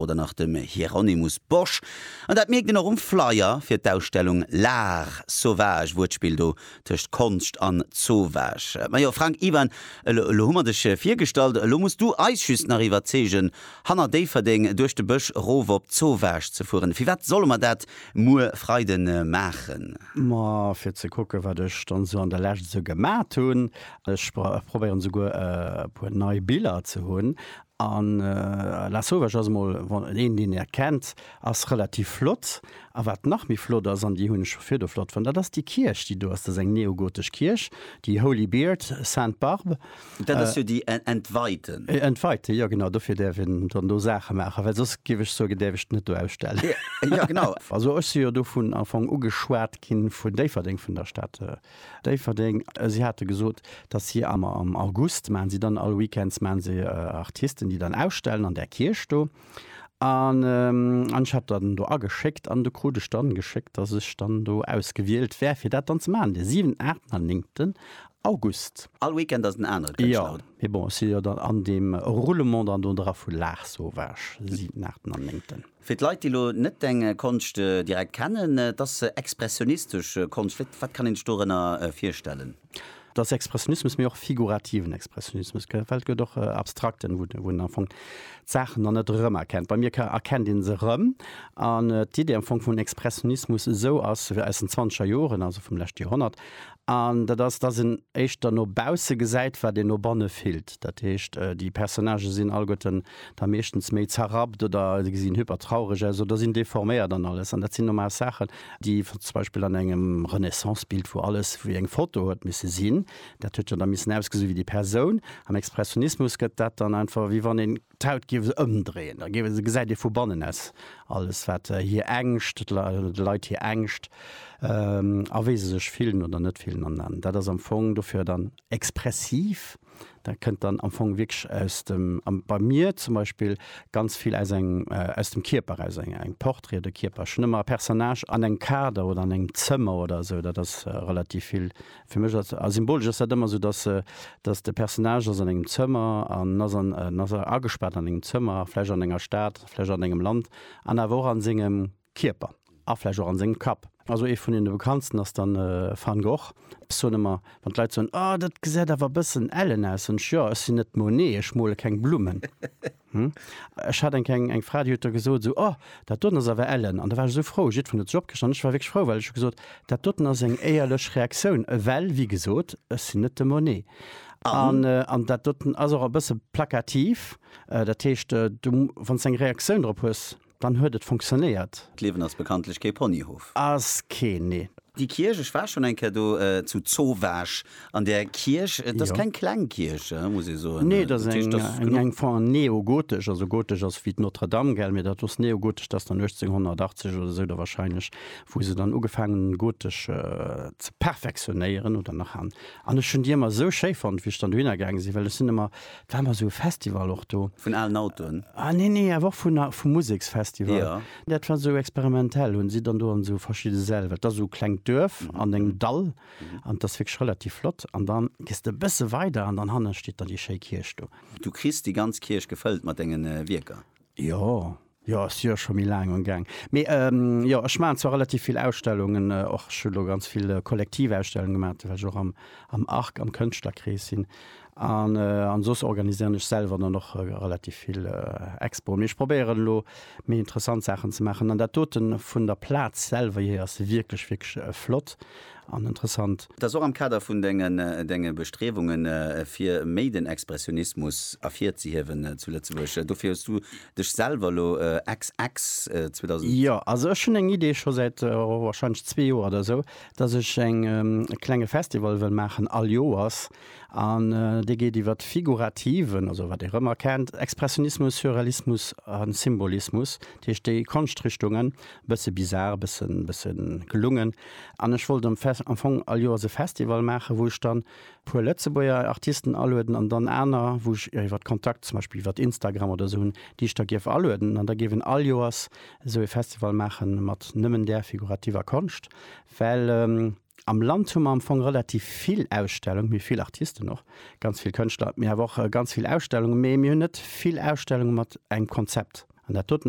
oder nach dem Hieronymus Bosch. An dat mierkt een och um Flyer fir d'Ausstellung L'art sauvage, Wuertspill do tëscht Konscht an Zoowag. Majo Frank Iwan, elo hu mer dech virgestallt, elo muss du eis just nach iwwerzeegen, hanner Déifferdeng duerch de Bësch rof op Zoowag ze fueren. Firwat solle mer dat muer Freide maachen? Ma fir ze kucken, wat ech dann esou an der Lescht esou gemat hunn. Ech probéieren esouguer e puer nei Biller ze hunn. A La Sauvage ass emol een, deen Är kennt, ass relativ flott. A wat nach méi flott ass, an déi hunn ech scho virdu flott fonnt, dat ass déi Kierch, déi do ass. Dat ass eng neogotesch Kierch, déi Holy Biert, Sainte Barbe. Dat ass jo déi entweite. Entweite, jo genau. Dofir däerf een dann do Saache maachen, well soss, géif ech soen, däerf ech et net do ausstellen. Jo, genau. Also ech si jo do vun Anfong ugeschwat ginn, vun Déifferdeng, vun der Stad. Déifferdeng, si hate gesot, datt si am August maache si dann all Weekends maache si Artisten, déi dann ausstellen an där Kierch do. An ech hat dann do ageschéckt an do krut ech dann geschéckt, datt ech dann do ausgewielt wär, fir dat dann ze maachen, de siwenten, aachten an néngten August. All Weekend ass en anere Kënschtler, oder? Jo, mee bon, ech si jo dann an deem Roulement dann do dra vu Laach Sauvage, siwenten, aachten an néngten. Fir d'Leit, déi elo net deng Konscht direkt kennen, et ass expressionistesch Konscht. Vläicht, wat kann een sech dorënner virstellen? Et ass Expressionismus, mee och figurativen Expressionismus, gell? Well et gëtt och abstrakten, wou de, wou een am Fong d'Saachen dann net erëmerkennt. Bei mir ka, erkennt een se erëm. An d'Idee am Fong vun Expressionismus esou ass aus den zwanzeger Joren, also vum leschte Joerhonnert, An dat ass, dass een éischter no bausse gesäit, wat een no banne fillt. Dat heescht, déi Personnagë sinn alleguerten da meeschtens méi zerrappt oder se gesinn hypertraureg aus oder sinn deforméiert an alles. An dat sinn normal Saachen, déi zum Beispill an engem Renaissance-Bild, wou alles wéi eng Foto huet misse sinn, dat huet jo da missen ausgesinn wéi déi Persoun. Am Expressionismus gëtt dat dann einfach, wéi wann een D'Haut giew se ëmdréien, da giew se, gesäit ee vu bannen aus alles wat hir Ängscht, de Leit hir Ängscht a wéi se sech fillen oder net fillen an an dat ass am Fong dofir dann expressiv. Dat kënnt dann am Fong wierklech aus dem, am bei mir zum Beispill ganz vill aus engem, aus dem Kierper eraus, eng eng Portrait de Kierper. Ech hunn ëmmer e Personnage an engem Kader oder an engem Zëmmer oder esou, dat ass relativ vill Fir mech ass, a symbolesch ass dat ëmmer esou, dass, dass de Personnage ass an engem Zëmmer an ass an, en ass agespaart an engem Zëmmer, vläch an enger Stad, vläch an engem Land an awer och an sengem Kierper a vläch och an sengem Kapp. Also ee vun deene bekanntsten ass dann Van Gogh. Ech soen ëmmer, wann d'Leit soen, Oh, dat gesäit awer e bëssen ellen aus, soen ech, Jo, ech sinn net Monet, ech mole keng Blummen. Ech hat eng Kéng eng Fra, déi huet da gesot esou, Oh, dat doten ass awer ellen. An da war ech esou frou, jiddwereen huet sech opgeriicht an ech war wierklech frou, well ech hu gesot, dat doten ass eng éierlech Reaktioun, ewell, wéi gesot, ech sinn net de Monet. An dat doten ass och e bësse plakativ, dat heescht, du, wann s de eng Reaktioun drop hues, Dann huet et fonktionnéiert. D'Liewen ass bekanntlech kee Ponyhof. Ass keen, nee. Déi Kierch, ech war schonn eng Kéier do, zu Zowaasch an där Kierch. Et ass keng kleng Kierch, muss ee soen. Nee, et ass eng Form neogotesch. Also gotesch ass wéi d'Notre-Dame, gell, mee dat ass neogotesch. Dat ass dann 1880 oder esou da warscheinlech, wou se dann ugefaangen hunn, d'Gotesch ze perfektionéieren oder nach. An ech hunn déi ëmmer esou schéi fonnt, wéi ech dann dohinner gaange sinn, well ech sinn ëmmer War mol sou e Festival och do. Vun alen Autoen? Ah nee, nee, awer och vun a, vum Museksfestival. Jo. Dat war sou experimentell, hunn si dann do an sou verschidde Säll, wat ass sou klengt Duerf an engem Dall an et ass wierklech relativ flott. An da gees de e bësse weider an dann hanne steet dann déi schéi Kierch do. Du kriss déi ganz Kierch gefëllt mat dengen Wierker. Jo, jo, ass jo scho méi laang am Gaang. Mee jo, ech maachen zwar relativ vill Ausstellungen och. Ech hu lo ganz vill Kollektivausstellungen gemaach, well ech och am Arc, am Kënschtlerkrees sinn. An an soss organiséieren ech selwer dann och relativ vill Expoen. Mee ech probéieren elo méi interessant Saachen ze maachen. An dat doten vun der Plaz selwer hier ass wierklech, wierklech flott. an interessant. Et ass och am Kader vun Denge Bestriewunge fir méi den Expressionismus ervirzehiewen zu Lëtzebuerg. Dofir hues Du Dech selwer elo ex. Ex. 2000. Jo, also ech hunn eng Idee scho säit warscheinlech zwee Joer oder esou, datt ech e klenge Festival wëll maachen all Joers an dee geet iwwer de figurativen, also wat ee rëmmer kennt, Expressionismus, Surrealismus a Symbolismus. Dat heescht déi Konschtrichtungen, e bësse bizar, e bësse gelungen. An ech wollt am am Fong all Joers e Festival maachen, wou ech dann puer Lëtzebuerger Artisten alueden an dann aner, wou ech iwwert Kontakt, zum Beispill iwwert Instagram oder esou hunn, déi ech da géif alueden. An da géif een all Joers esou ee Festival maache mat nëmmen där figurativer Konscht. Well am Land hu mer am Fong relativ vill Ausstellungen, mee vill Artisten och, ganz vill Kënschtler, mee awer och ganz vill Ausstellungen, mee mir hunn net vill Ausstellunge mat engem Konzept. An dat doten.